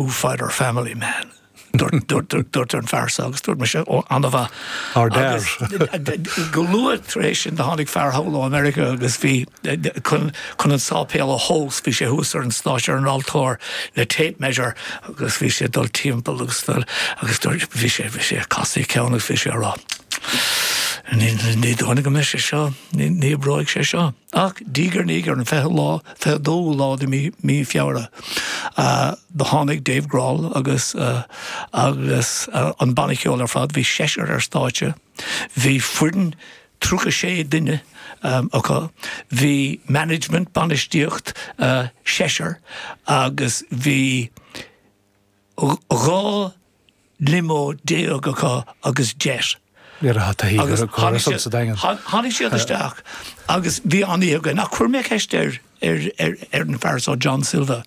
Foo Fighters family man? a dúirt an fear so agus dúirt mise ó an-mhaith. Ard. Go luath tar éis sin do tháinig fear anall ó America agus bhí chun chun an sáipéal a thomhas bhí sé thuas ar an stáitse ar an altóir le tape measure agus bhí sé ag dul timpeall agus dul agus dúirt bhí sé bhí sé ag casadh a cheann agus bhí sé ag rá ní ní dóigh go mbeidh sé seo ní ní oibreoidh sé seo. Ach diaidh ar ndiaidh, ar an 20 lá, 22 lá de mhí Feabhra, do tháinig Dave Grohl agus agus an banna ceoil ar fad, bhí seisear ar stáitse, bhí foireann 36 duine acu, bhí management, bainistíocht, seisear agus bhí 12 limo acu agus jet. Ní raibh hata thíogar ag Horace agus tháinig siad isteach agus bhí an-oíche againn ach chuir mé ceist ar an fear seo, John Silva,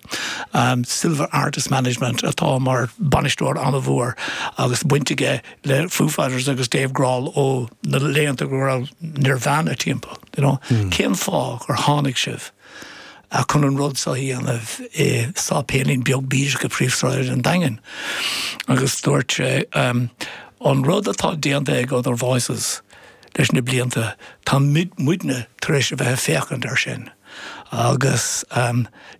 Silva Artist Management, atá mar bhainisteoir an-mhór agus baint aige le Foo Fighters agus Dave Grohl ó na laethanta go raibh Nirvana timpeall, you know, cén fáth gur tháinig sibh? a chun an rud seo a dhéanamh i sáipéilín beag bídeach i bpríomhshráid an Daingin agus dúirt sé An rud atá déanta ag Other Voices leis na blianta, tá muidne tar éis a bheith ag féachaint air sin agus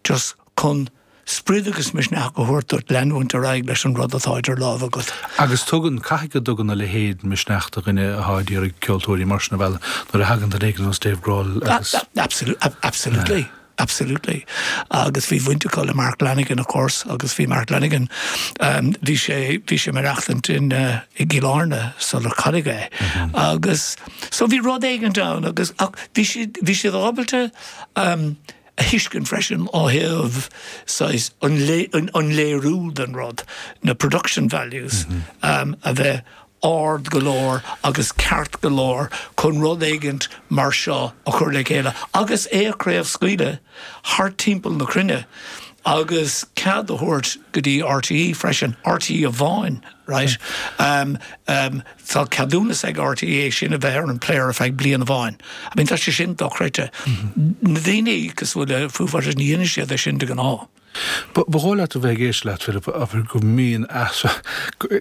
just chun sprid agus misneach a thabhairt duit leanúint ar aghaidh leis an rud atá idir lámha agat. Agus tugann caithfidh go dtugann a leithéid misneach do dhuine atá ag iarraidh ceoltóirí mar sin a mhealladh nuair a thagann duine éigin ar nós Dave Grohl agus. Absolutely, absolutely. Agus bhí baint acu le Mark Lanegan of course agus bhí Mark Lanegan, bhí sé, bhí sé ag maireachtaint i gCill Airne sular cailleadh é agus so bhí rud éigint ann agus ach bhí siad, bhí siad ábalta, a thuiscint freisin ó thaobh saghas an léiriú den rud, na production values, a bheith ard go leor agus ceart go leor chun rud éigint mar seo a chur le chéile agus é a chraobhscaoileadh thart timpeall na cruinne agus cead a thabhairt go dtí RTÉ freisin, RTÉ amháin, right. Tá ceadúnas ag RTÉ é sin a bheith ar an player ar feadh bliana amháin. I mean tá sé sin dochreidte. Na daoine go bhfuil a fhios agat ní dhéanann siad é sin de ghnáth. Ba dhóigh leat a bheith ag éisteacht leat Philip a bhfuil go mbíonn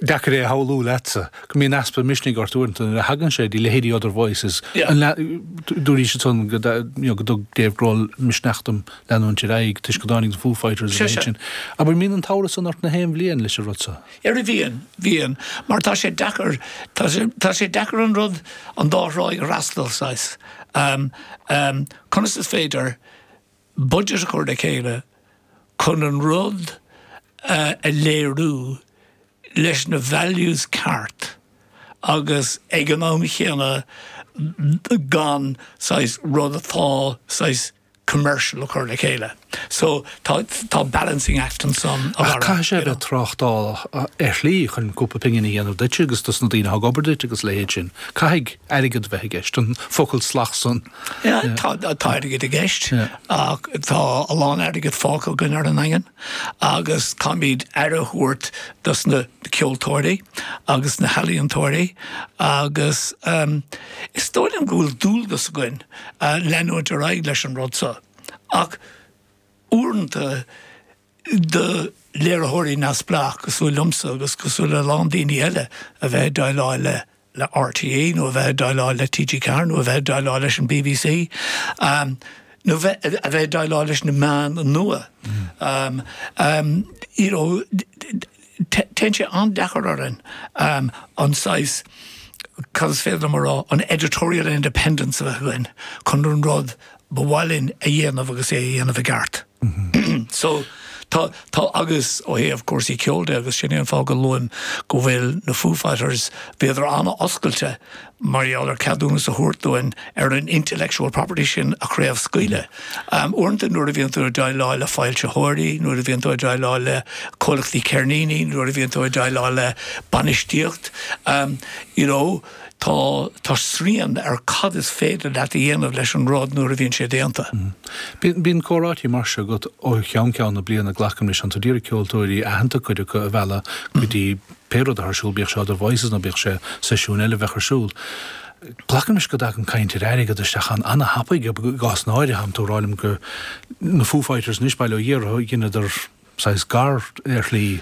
deacair é a shamhlú leatsa, go mbíonn easpa misnigh ort uaireanta nuair a thagann sé go dtí leithéidí Other Voices. Dúraís ansan go dtug Dave Grohl misneach dom leanúint ar aghaidh toisc go dtáinig na Foo Fighters agus sin. Abair an mbíonn an t-amhras san ort gach aon bhliain leis an rud seo. Ar mo mhian, mhian, mar tá sé deacair, tá sé deacair an rud, an dá thráigh a fhreastal, saghas, ehm, ehm, conas is féidir budget a chur le chéile chun an rud a léiriú leis na values cearta agus ag an am chéanna gan, saghas, rud atá, saghas, commercial a chur le chéile. So tá tá balancing act ansan. Caithfidh sé a bheith tráchtálach ar shlí chun cúpla pingin a dhéanamh duitse agus dos na daoine a thug obair duit agus leithéid sin. Caithfidh airgead a bheith i gceist, an focal salach san. Tá airgead i gceist ach tá a lán airgead fágtha againn ar an nDaingean. agus táimid ag aire a thabhairt dos na ceoltóirí agus na healaíontóirí agus is dóigh liom go bhfuil dualgas againn leanúint ar aghaidh leis an rud so ach uaireanta do léiritheoirí neamhspleách cosúil liomsa agus cosúil le a lán daoine eile a bheith ag déileáil le le RTÉ nó a bheith ag déileáil le TG4 nó a bheith ag déileáil leis an bbc nó a bheith ag déileáil leis na meáin nua. Téann sé an-deacair orainn an saghas, conas is féidir liom a rá, an editorial independence a bheith chun an rud ba mhaith linn a dhéanamh agus é a dhéanamh i gceart. So, tá, tá, agus ó thaobh cúrsaí ceoil de, agus sin é an fáth go luaim na Foo Fighters, bhíodar an-oscailte mar gheall ar ceadúnas a thabhairt dúinn ar an intellectual property sin a chraobhscaoileadh. Uaireanta nuair a bhíonn tú ag déileáil le foilsitheoirí, nuair a bhíonn tú ag déileáil le comhlachtaí ceirníní, nuair a bhíonn tú ag déileáil le bainistíocht, you know, tá, tá srian ar cad is féidir leat a dhéanamh leis an rud nuair a bhíonn sé déanta. Bíonn, bíonn comhráití mar seo agat ó cheann ceann na bliana, glacaim leis, 's tú ad iarraidh ceoltóirí aitheanta, cuid acu, a mhealladh go dtí pé rud atá ar siúl, bíodh sé Other Voices nó bíodh sé seisiún eile a bheadh ar siúl. Glacaim leis go dtagann caint ar airgead isteach ann ana-thapaidh i gcásanna áirithe, tánn tú ag rá liom go, na Foo Fighters anois, ba dhóigh leat, dheineadar saghas gar, ar shlí,